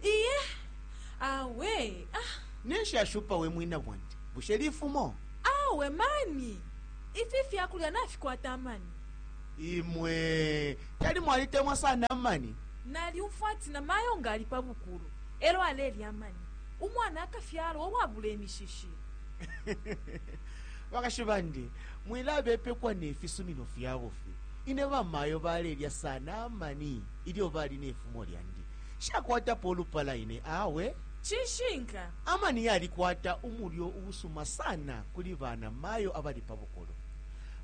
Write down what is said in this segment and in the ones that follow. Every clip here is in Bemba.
iye awe ah, ninshi ashupa we mwina bwandi bushe lifumo awe mani ifi fyakulya nafikwata amani imwe tali mwalitemwa sana amani nalyumfwa ati na mayo nga ali pa bukulu elo alelya amani umwana akafyalwa uwabula imishishi bakashi bandi mwilabepekwa nefisumino fyabo fye ine bamayo balelya sana amani ilyo bali ne fumo lyandi. Nshakwatapo ulupala ine awe. Cishinka. Amani yalikwata umulyo uusuma sana kuli bana mayo abali pa bukulu.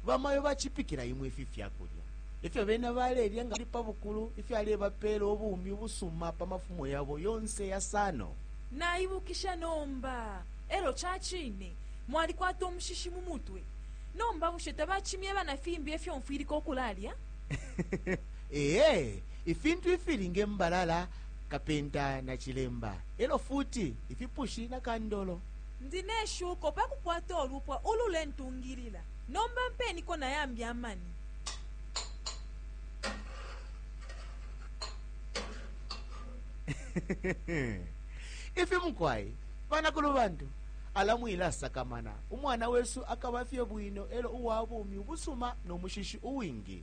Bamayo bacipikila imwe ifi fyakulya. Efyo bena balelya nga bali pa bukulu ifyalebapela ubumi ubusuma pa mafumo yabo yonse yasano. Naibukisha nomba. Elyo cacine mwalikwata umushishi mu mutwe. Nomba bushe tabacimyeba na fimbi efyo mfwilika ukulalya? Ee, ifintu ifili nge mbalala, kapenta na cilemba, e lyo futi ifipushi na kandolo. Ndi ne shuko pa kukwata ulupwa ululentungilila. Nomba mpeniko na yambi amani. Ifi mukwai, banakulubantu, ala mwilasakamana. Umwana wesu akaba fye bwino e lyo uwa bumi ubusuma no mushishi uwingi.